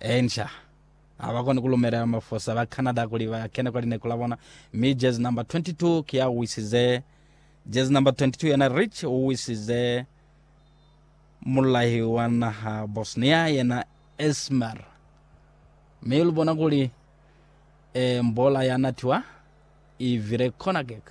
Enca. Ha ba koni ku lumelela mafosa ba Canada kuli ba kene kwa lineku la bona, mi jersey number 22 ki ya u wisize. Jersey number 22 yena Rich u wisize mululahi wa naha Bosnia yena Esmer. Mi lu bona kuli eh, mbola ya natiwa i vile corner kick.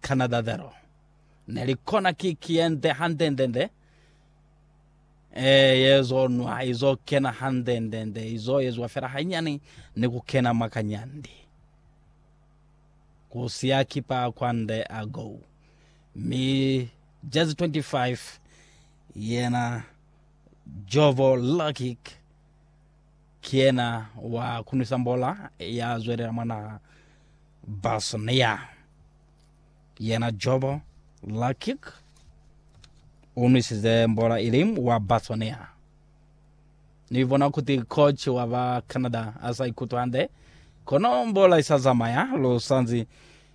Canada zero. Ne li kona kiki yende handendende, ee, yezo nwa, izo kena handendende, izo yezwa fela hanyani ni ku kena mwa kanyandi. Ku siya kipa kwande a go. Mi jezi 25 yena Jovo Lakic, Ki yena wa kunwisa mbola ya zwelela mwa naha Bosnia, yena Jobo Lakic u nwisize mbola ili wa Bosnia. Ni bona kuti coach wa ba Canada a sa ikutwi hande, kono mbola i sa zamaya. Lu sanzi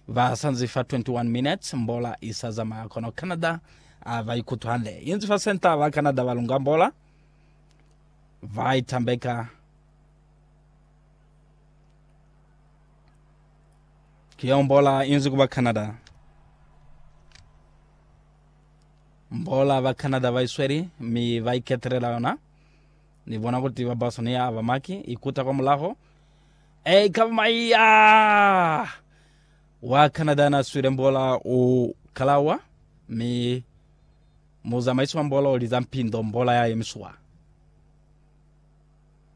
ba sanzi fa 21 minutes, mbola i sa zamaya, kono Canada a ba ikutwi hande. Inzi fa centre ba Canada ba lunga mbola. Vai tambeka ki yeo mbola inzi kuba Canada. Mbola ba Canada vai sweli mi vai ketelela yona. Ni bona kuti ba Boston ya ba maki ikuta kwa mulaho. E ikaba mai ya wa Canada na swile mbola u kalawa mi Muzamaisi wa mbola o liza mpindo mbola ya yemiswa.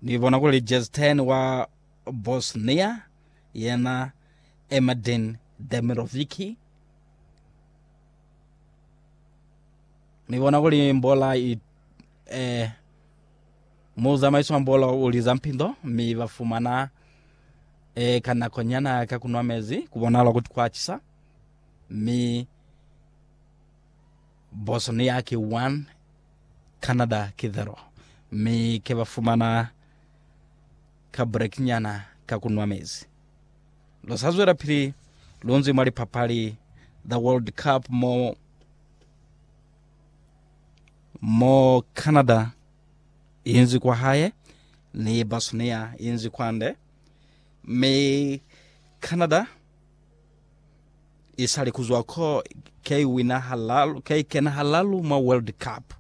Ni bona kuli Jezten wa Bosnia yena Emedin Demirovici. Ni bona kuli mbola i eh, muzamaisi wa mbola o liza mpindo mi ba fumana eh, ka nakonyana ka kunwa mezi, ku bonala kuti kwa cisa mi Bosnia ki 1, Canada ki 0, mi ke ba fumana ka break nyana ka ku nwa mezi. Lu sa zwelapili lu nzwi mwa lipapali za World Cup mo mo Canada i nzwi kwa hae ni Bosnia i nzwi kwande, mi Canada Isali kuzwa ko, K wina halalu, K kena halalu mwa World Cup.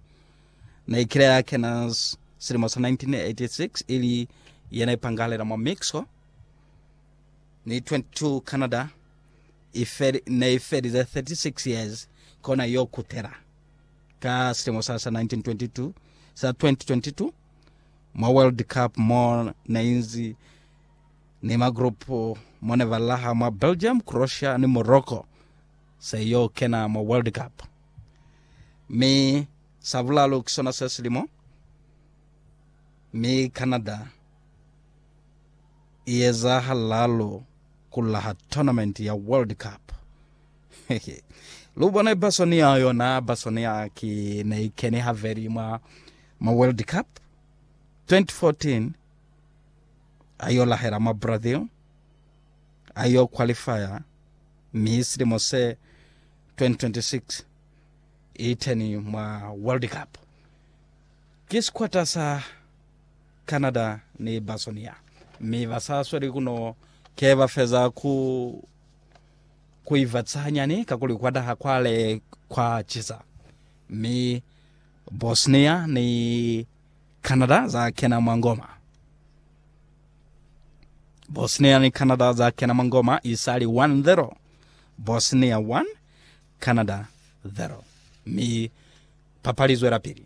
Ne ikile ya kena silimo sa 1986 ili yena ipangalela mwa Mexico. Ni 22 Canada ifeli, ne ifelize 36 years kona yo kutela ka silimo sa sa 1922 sa 2022 mwa World Cup mo ne inzi ni magrupu mo ne ba laha mwa Belgium, Croatia ni Morocco se yo kena mwa World Cup. Mi sa bulalu ki sona se silimo, mi Canada i eza halalu ku laha tournament ya World Cup. Lu bone Basonia yona, Basonia ki ne i keni haveli mwa ma World Cup 2014, ayo lahela mwa Brazil, ayo qualifier mi silimo se 2026 iteni mwa World Cup. Ki sikwata sa Canada ni Basonia mi basa sweli kuno ke bafeza ku kuivatisa hanyani kakuli kwa taha kwale kwa cisa mi Bosnia ni Canada za kena mwa ngoma. Bosnia ni Canada za kena mwa ngoma isali 1-0, Bosnia 1, Canada 0, mi papali zwelapili.